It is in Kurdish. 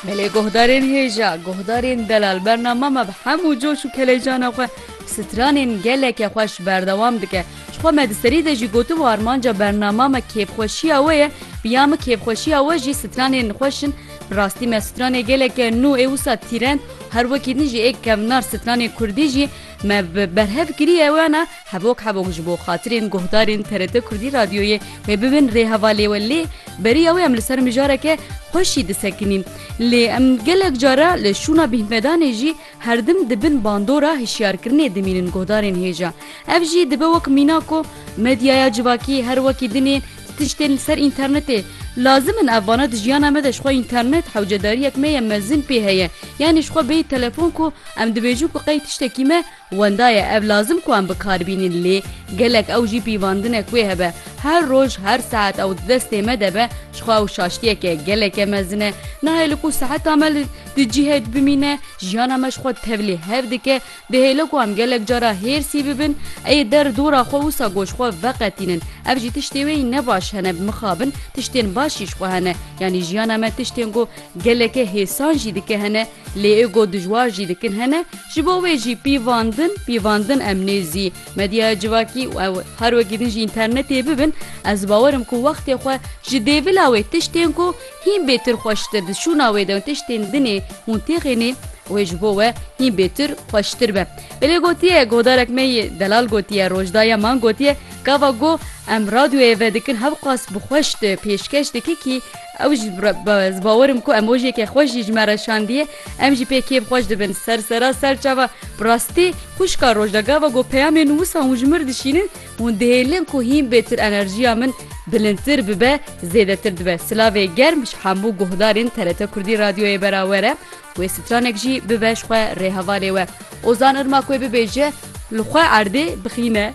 Me lê guhdarên hêja, guhdarên delal berna me me bi hemû coş û keleycana xwe stranên geleke xweş berdewam dike. Ji xwe me di serî de jî gotibû armanca bernama me kêfxweşiya we ye, bi ya min kêfxweşiya we jî stranên xweş in. Bi rastî me stranê geleke nû ê wisa tîrend, her wekî din jî ê kevnar stranê kurdî jî me bi berhev kiriye wena Hevok hevok ji bo xatirên guhdarên TRT Kurdî Radyoyê wê bibin rêheva lê we lê beriya wê em li ser mijareke xweşî disekinîn. Lê em gelek cara li şûna bîhmedanê jî herdim di bin bandora hişyarkirinê dimînin guhdarên hêja. Ev jî dibe wek mîna ku medyaya civakî her wekî din ê ti tiştên li ser înternetê lazim in ev vana di jiyana me de ji xwe înternet hewcedariyek me ye mezin pê heye yanî ji xwe bêyî telefon ku em dibêjin ku qey tiştekî me Wenda ye ev lazim ku em bi kar bînin lê gelek ew jî pîvandine ku wê hebe. Her roj, her saet ew di destê me de be ji xwe ew şaştiyeke geleke mezin e. Nahê li ku seheta me li di cihê de bimîne, jiyana me ji xwe tevlî hev dike. Dihêle ku em gelek cara hêrsî bibin, ê der dora xwe wisa ku ji xwe veqetînin. Ev jî tiştê wê ne baş hene bi mixabin, tiştên baş jî ji xwe hene. Yanî jiyana me tiştên ku geleke hêsan jî dike hene. Lê ê got dijwar jî dikin hene, ji bo wê jî pîvan din, pîvan din em nêzî. Medyaya civakî û ew her wekî din jî înternetê bibin, ez bawer im ku wextê xwe ji dêvila wê tiştên ku hîn bêtir xweştir di şûna wê de û tiştên dinê hûn têxênê wê ji bo we hîn bêtir xweştir be. Belê gotiye, guhdarek me yê delal gotiye, Rojdaye man gotiye, gava ku em radyoyê ve dikin hevqas bi xweş di pêşkeş dike kî Ew ji bi bawer im ku emojiyeke xweş jî ji me re şandiye, em jî pê kêf xweş dibin. Ser sera ser çava bi rastî xwişka roj de gava ku peyamên wisa hûn ji min re dişînin hûn dihêlin ku hîn bêtir enerjiya min bilindtir bibe zêdetir dibe. Silavê germ ji hemû guhdarên TRT Kurdî Radyoyê berawer e. Wê stranek jî bibe ji xwe rêhevalê we. Ozan Irmak wê bibêje li xwe erdê bixîne.